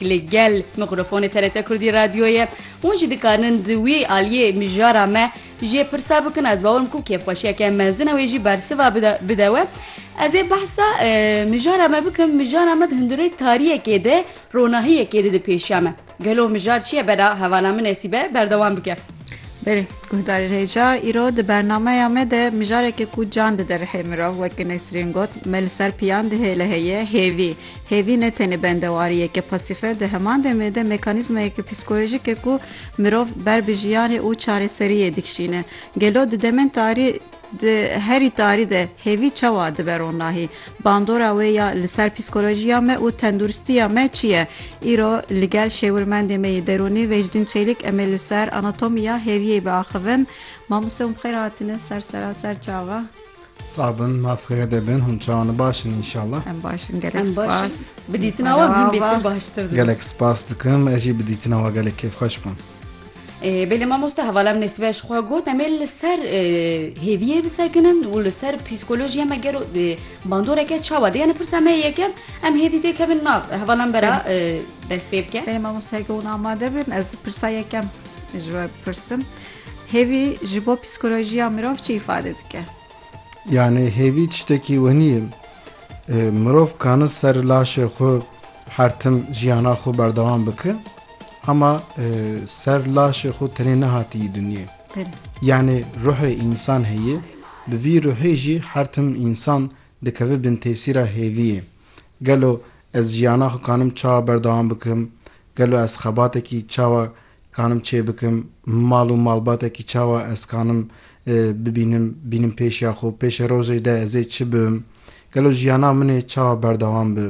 Li gel mîkrofonê TRT Kurdî Radyoyê hûn jî dikarinin di wî aliyê mijara me jê pirsa bikin, ez bawer dikim ku kêfxweşiyeke mezin e wê jî bersiva bide we. Ez ê behsa mijara me bikim, mijara me di hundirê tariyekê de ronahiyekê dide pêşiya me. Gelo mijar çi ye bera hevala min Nesîbe berdewam bike. Belê guhdarên hêja, îro di bernameya me de mijareke ku can dide rihê mirov weke Nesrîn got, me li ser piyan dihêle heye hêvî. Hêvî ne tenê bendewariyeke pasîf e, di heman demê de mekanîzmayeke psîkolojîk e ku mirov ber bi jiyanê û çareseriyê dikişîne. Gelo di demên tarî di herî tarî de hêvî çawa dibe ronahî? Bandora wê ya li ser psîkolojiya me û tenduristiya me çi ye? Îro li gel şêwirmendê me yê derûnî Vecdîn Çêlik em ê li ser anatomiya hêviyê biaxivin. Mamoste û bi xêr hatine ser seraser çava. Sax bin maf xêrede bin hûn çawan baş in înşallah. Em baş in gelek Em baş in. spas. Bi dîtina wan hûn bêtir baştir dibin. Gelek spas dikim ez jî bi dîtina we gelek kêfxweş bûm. Ee, Belê mamoste hevala min nesibe ji xwe got em ê li ser e, hêviyê bisekinin û li ser psîkolojiya me gero e, bandoreke çawa de yani pirsa me yekem em hêdî tê kevin na hevala min bera e, dest pê bike. Benim ama saygı ona amade bin. Ez pırsa yekem. Jüve pırsım. Hêvî ji bo psîkolojiya mirov çi îfade dike? Yanê hêvî tiştekî wenî ye. Mirov kane ser laşê xwe her tim jiyana xwe berdewam bike ama ser laşê xwe tenê nehatiye dinyê. Yanê ruhê însan heye, bi vî ruhê jî her tim însan dikeve bin tesîra hêviyê. Gelo ez jiyana xwe kanim çawa berdewam bikim, gelo ez xebatekî çawa Kanim çê bikim, mal û malbatekî çawa ez kanim bibînim, bînim pêşiya xwe, pêşê rojê de ez ê çi bim, gelo jiyana min ê çawa berdewam bi.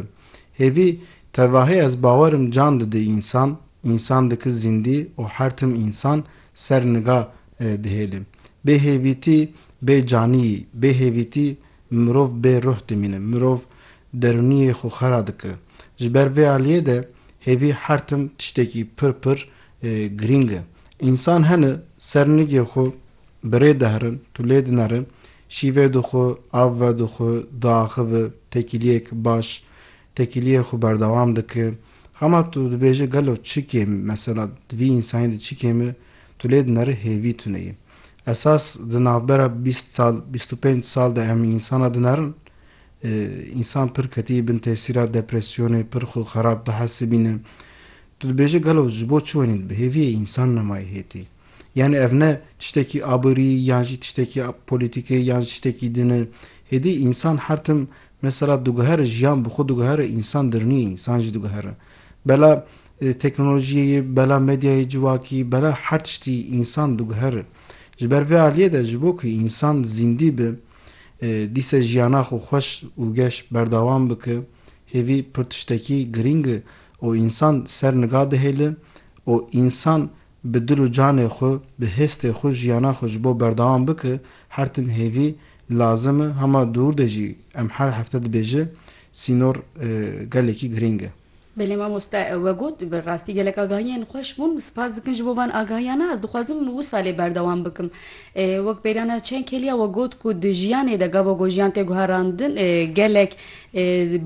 Hêvî, tevahê ez bawer im can didi însan, însan diki zîndî û her tim însan ser niga dihêli. Bê hêvîtî bê caniyî, bê hêvîtî mirov bê ruh dimîne, mirov Derûniyê xwe xera dike. Ji ber vê aliyê de hêvî her tim tiştekî pir pir girîng e. Însan hene ser nigê xwe bi rê diherin, tu lê dinere, şîvê dixwe, av vedixwe, diaxive, tekîliyek baş, tekîliyê xwe berdewam dike. Hema tu dibêje gelo çi kêm e, mesela di vî însanî de çi kêm e, tu lê dinere hêvî tune ye. Esas di navbera bîst sal, bîst û pênc sal de em însana dinerin, Însan pir ketî bin tesîra depresyonê, pir xwe xerab dihesibîne. Tu dibêje gelo ji bo çi wenî di bi hêviyê însan nemayê hêtî? Yanî ev ne tiştekî aborî yan jî tiştekî polîtîkê yan jî tiştekî din e. Hêdî însan her tim mesela diguhere jiyan bi xwe diguhere însan dirniyê însan jî diguhere. Bela teknolojiyê ye, bela medyayê civakî, bela her tiştî însan diguhere. Ji ber vê aliyê de ji bo ku însan zîndî bi, Dîse jiyana xwe xweş û geş berdawam bike. Hêvî pir tiştekî girîng e û însan ser niga dihêle û însan bi dil û canê xwe, bi hêstê xwe jiyana xwe ji bo berdawam bike, her tim hêvî lazim e. Hema dûr de jî em her hefte dibêje, sînor gelekî girîng e. Belê mamoste we got bi rastî gelek agahiyên xweş bûn, spas dikin ji bo van agahiyana, ez dixwazim wisa lê berdewam bikim. Wek peyrana çend kêliya we got ku di jiyanê de gava ku jiyan tê guherandin gelek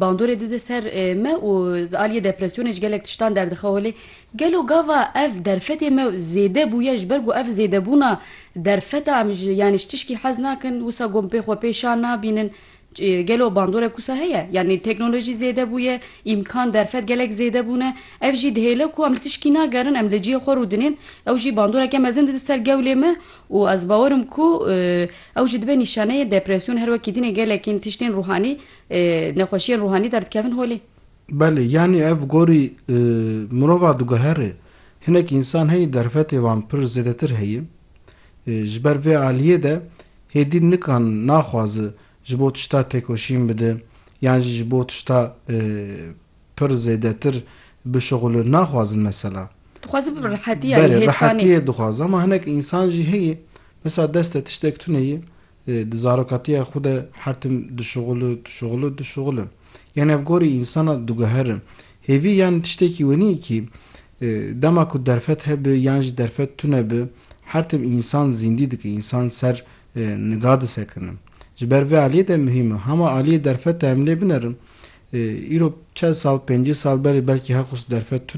bandorê dide ser me û di aliyê depresyonê ji gelek tiştan derdixe holê gelo gava ev derfetê me zêde bûye ji ber ku ev zêdebûna derfeta em ji yanî ji tişkî hez nakin wisa got pê xwe pê şa nabînin Gelo bandorek wisa heye? Yanî teknolojî zêde bûye, îmkan, derfet gelek zêde bûne. Ev jî dihêle ku em li tişkî nagerin, em li cihê xwe rû dinên. Ew jî bandoreke mezin dide ser gewlê me û ez bawer im ku ew jî dibe nîşaneyê depresyon. Her wekî dinê gelekîn tiştên rûhanî, nexweşiyên rûhanî derdikevin holê. Belê, yanî ev gorî mirova diguhere. Hinek însan heye derfetê wan pir zêdetir heye. Ji ber vê aliyê de hêdî nikan naxwaze ji bo tişta têkoşîn bide yan jî ji bo tişta pir zêdetir bişuxulin naxwazin mesela. Dixwaze bi rehetî yanî hêsanî. Berê rehetîyê dixwaze ama hinek însan jî heye mesela deste tiştek tuneyê Di zarokatiya xwe de her tim dişuxul û dişuxul û dişuxul im. Yan ev gorî însana diguherim. Hêvî yan tiştekî wenî kî dema ku derfet hebe yan jî derfet tune be her tim însan zîndî dike, însan ser niga disekine. Ji ber vê aliyê de muhîm e. Hema aliyê derfet e em lê binerin. Îro çend sal, pêncî sal berê belkî her xwist derfet tune.